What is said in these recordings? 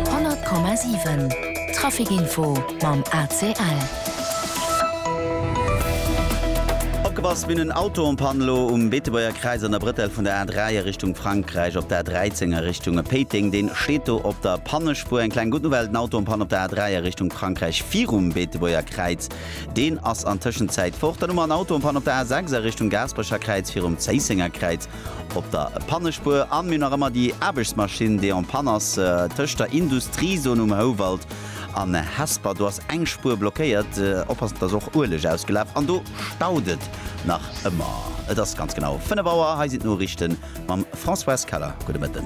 100,7 Trafic Info mam ACL. Opgepasst, mir hunn en Auto en panne elo um Beetebuerger Kräiz an der Brëtell vun der A3 a Richtung Frankräich op der A13 a Richtung Péiteng. Deen steet do op der Pannespuer. Eng kleng gutt Nouvelle, den Auto en panne op der A3 a Richtung Frankräich virum Beetebuerger Kräiz, deen ass an Tëschenzäit fort. Dann hu mer en Auto en panne op der A6 a Richtung Gaasperecher Kräiz virum Zéissenger Kräiz. Op der Pannespuer an mir hunn nach ëmmer déi Aarbechtsmaschinn, déi en panne ass, tëscht der Industriezon um Houwald an Hesper. Do ass eng Spuer blockéiert. Oppassen, et ass och Ueleg ausgelaf an do staut et nach ëmmer. Et ass ganz genau 5 Auer. Hei sinn d'Noriichten mam Françoise Keller. Gudde Mëtten.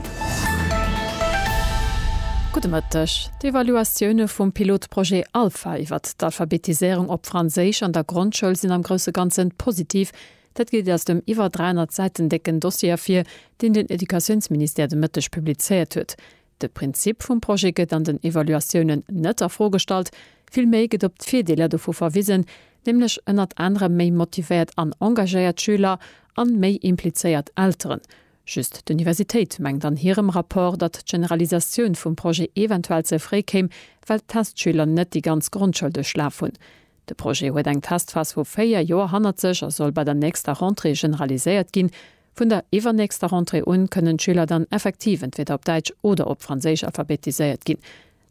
Gudde Mëtteg. D'Evaluatioune vum Pilotprojet Alpha iwwert d'Alphabetiséierung op Franséisch an der Grondschoul sinn am grousse Ganzen positiv, Dat geet aus dem iwwer 300 Säiten décken Dossier ervir, deen den Educatiounsministère de Mëtteg publizéiert huet. De Prinzip vum Projet gëtt an den Evaluatiounen net a Fro gestallt, villméi gëtt op d'Virdeeler dovu verwisen, nämlech ënnert anerem méi motivéiert an engagéiert Schüler an méi implizéiert Elteren. Just d'Universitéit mengt an hirem Rapport, datt d'Generalisatioun vum Projet eventuell ze fréi kéim, well d'Testschüler net déi ganz Grondschoul duerchlaf hunn. De Projet huet eng Testphas vu véier Joer hannert sech a soll bei der nächster Rentrée generaliséiert ginn. Vun der iwwernächster Rentrée un kënnen d'Schüler dann effektiv entweder op Däitsch oder op Franséisch alphabetiséiert ginn.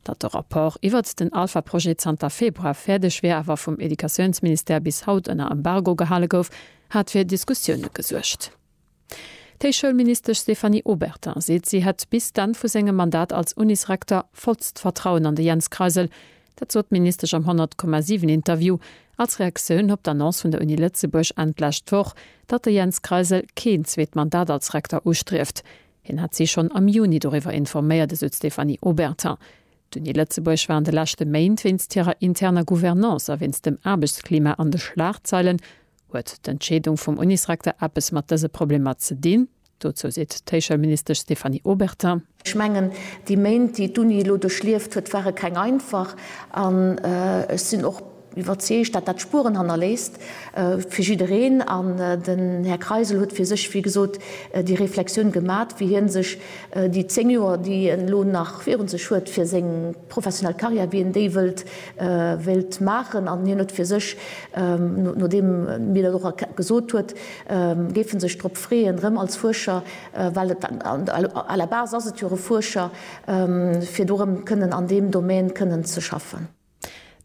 Datt de Rapport iwwert den Alpha-Projet zanter Februar fäerdeg wär, awer vum Educatiounsministère bis haut ënner Embargo gehale gouf, hat fir Diskussioune gesuergt. D'Héichschoulministesch Stéphanie Obertin seet, si hätt bis d'Enn vu sengem Mandat als Unisrektor vollst Vertrauen an de Jens Kreisel. Dat sot d'Ministesch am 100,7 Interview als Reaktioun op d'Annonce vun der Uni Lëtzebuerg Enn d'lescht Woch, datt de Jens Kreisel keen zweet Mandat als Rektor ustrieft. Hien hätt si schonn am Juni doriwwer informéiert, esou d'Stéphanie Obertin. D'Uni Lëtzebuerg war an de leschte Méint wéinst hirer interner Gouvernance a wéinst dem Aarbechtsklima an de Schlagzeilen. Huet d'Entscheedung vum Unisrekter eppes mat dëse Problemer ze dinn? Dozou seet d'Héichschoulministesch Stéphanie Obertin. Ech mengen, déi Méint, déi d'Uni elo duerchlieft huet, ware keng einfach. An ech sinn och iwwerzeegt, datt dat Spueren hannerléisst fir jiddereen. An den Här Kreisel huet fir sech, wéi gesot, déi Reflexioun gemat, wéi hie sech déi zéng Joer, déi en elo nach virun sech huet, fir seng professionell Carrière wien déi wëllt wéilt maachen an hien huet fir sech, nodeem mir dat och gesot huet, géif en sech drop freeën erëm als Fuerscher, well et à la base ass et jo e Fuerscher, fir do erëm kënnen an deem Domaine kënnen ze schaffen.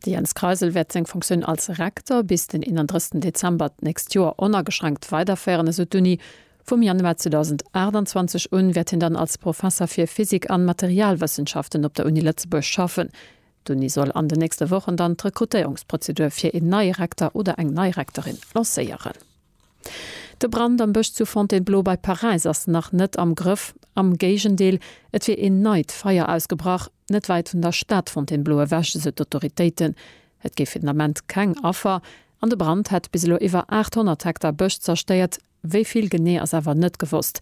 De Jens Kreisel wäert seng Fonctioun als Rektor bis den 31 Dezember d'nächst Joer onageschränkt weiderféieren, esou d'Uni. Vum Januar 2028 un wäert hien dann als Professer fir Physik an Materialwëssenschaften op der Uni Lëtzebuerg schaffen. D'Uni soll an den nächste Wochen dann d'Rekrutéierungsprozedur fir een neie Rektor oder eng nei Rektorin lancéieren. De Brand am Bësch zu Fontainebleau bei Paräis ass nach net am Grëff. Am Géigendeel, et wier een neit Feier ausgebrach, net wäit vun der Stad Fontainebleau ewech, esou d'Autoritéiten. Et géif fir den Ament keng Affer an de Brand hätt bis elo iwwer 800 Hektar Bësch zerstéiert. Wéi vill genee ass awer net gewosst.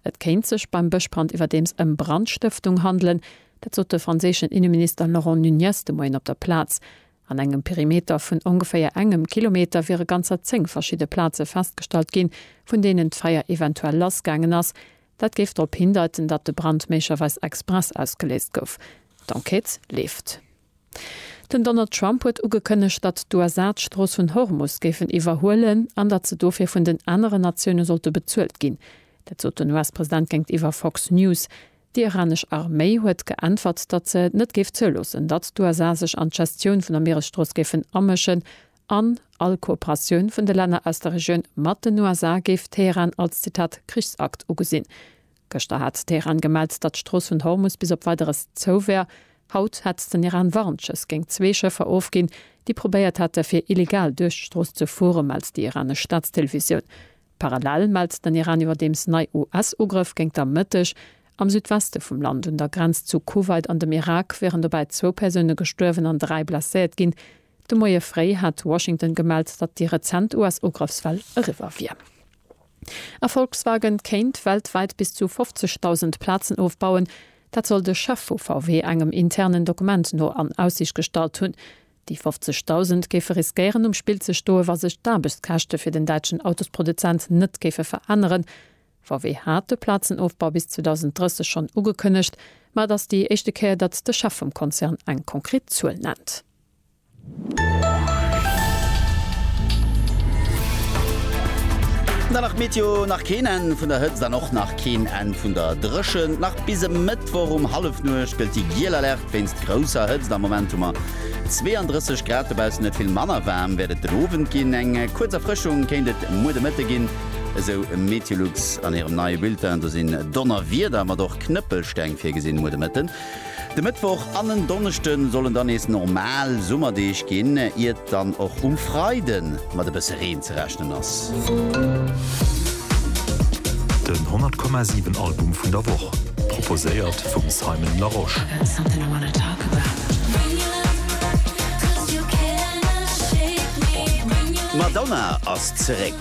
Et kéint sech beim Bëschbrand iwwerdeems ëm Brandstëftung handelen. Dat sot de franséischen Inneminister Laurent Nunez de Moien op der Plaz. An engem Perimeter vun ongeféier engem Kilometer wiere ganzer zéng verschidde Plaze festgestallt ginn, vun deenen d'Feier eventuell lass gaangen ass. Dat géif drop hindeiten, datt de Brand méiglecherweis express ausgeléist gouf. D'Enquête leeft. Den Donald Trump huet ugekënnegt, datt d'USA d'Strooss vun Hormus géifen iwwerhuelen an datt se dofir vun den aneren Natioune sollte bezuelt ginn. Dat sot den US-President géintiwwer Fox News. Déi iranesch Arméi huet geäntwert, datt se net géif zouloossen, datt d'USA sech an d'Gestioun vun der Mieresstrooss géifen amëschen an all Kooperatioun vun de Länner aus der Regioun mat den USA géif Teheran als, Zitat, Krichsakt ugesinn. Gëschter hat Teheran gemellt, datt d'Strooss vun Hormus bis op Weideres zou wär. Haut hätt den Iran Warnschëss géint zwee Schëffer ofginn, déi probéiert hätte fir illegal duerch d'Strooss ze fuere, mellt déi iranesch Staatstelevisioun. Parallel mellt den Iran iwwerdeems nei US-Ugrëff géint der Mëtteg am Südweste vum Land un der Grenz zu Kuwait an dem Irak wieren dobäi zwou Persoune gestuerwen an dräi blesséiert ginn. De Moie fréi hat Washington gemellt, datt déi rezent US-Ugrëffswell eriwwer wier. A Volkswagen kéint weltwäit bis zu 50.000 Plazen ofbauen. Dat soll de Chef vu VW engem internen Dokument no an Aussiicht gestallt hunn. Déi 50.000 géife riskéieren um Spill ze stoen, wa sech d'Aarbechtskäschte fir den däitschen Autosproduzent net géife veränneren. VW hat de Plazenofbau bis 2030 schonn ugekënnegt, ma et ass déi éischte Kéier, datt de Chef vum Konzern eng konkret Zuel nennt. Dann nach d'Meteo, nach keen Enn vun der Hëtzt an och nach keen Enn vun der Dréchent. Nach bis e Mëttwoch um Hallefnuecht gëllt déi giel Alerte wéinst grousser Hëtzt. Am Moment hu mer 32 Grad dobaussen, net vill manner waarm wäert et den Owend ginn. Eng kuerz Erfrëschung kéint et muer de Mëtte ginn, esou Meteolux an hirem neie Bulletin. Do sinn Donnerwieder mat och Knëppelsteng virgesinn muer de Mëtten. De Mëttwoch an en Donneschde sollen dann nees normal Summerdeeg ginn, iert dann och um Freide mat e bësse Reen ze rechnen ass. Den 100 Komma 7 Album vun der Woch, proposéiert vum Simon Larosche. D'Madonna ass zeréck!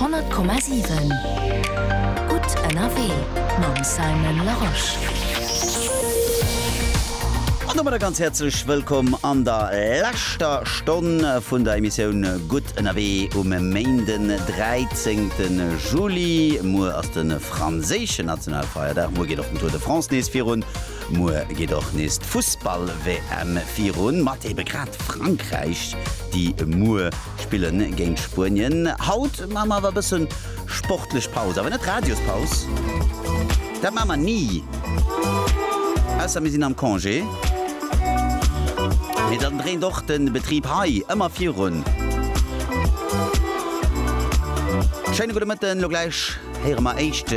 Honnert Komma siwen, gutt ënnerwee mam Simon Larosche. An domadder ganz häerzlech wëllkomm an der leschter Stonn vun der Emissioun Gutt ënnerwee um Méinden, 13 Juli. Muer ass de franséischen Nationalfeierdag, muer geet och den Tour de France nees virun. Muer geet och nees d'Fussball-WM virun, mat ebe grad Frankräich, déi muer spille géint Spuenien. Haut maache mer awer e bësse sportlech Paus, awer net Radiospaus, dat maache mer ni, ausser mir sinn am Congé, mee dann dréint och de Betrib hei ëmmer virun. Schéine gudde Mëtten, elo gläich. Héiere mer éischt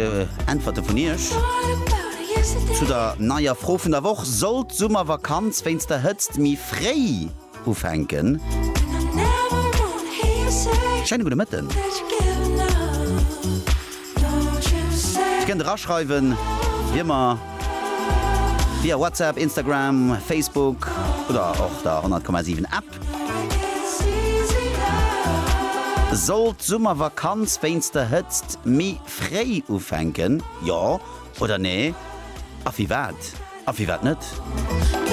Äntwerte vun iech zu der neier Fro vun der Woch, Sollt d'Summervakanz wéinst der Hëtzt méi fréi ufänken? Schéine gudde Mëtten. Dir kënnt eraschreiwen wéi ëmmer via WhatsApp, Instagram, Facebook oder och der 100,7 App. Sollt d'Summervakanz wéinst der Hëtzt méi fréi ufänken, jo oder nee? A firwat? A firwat net?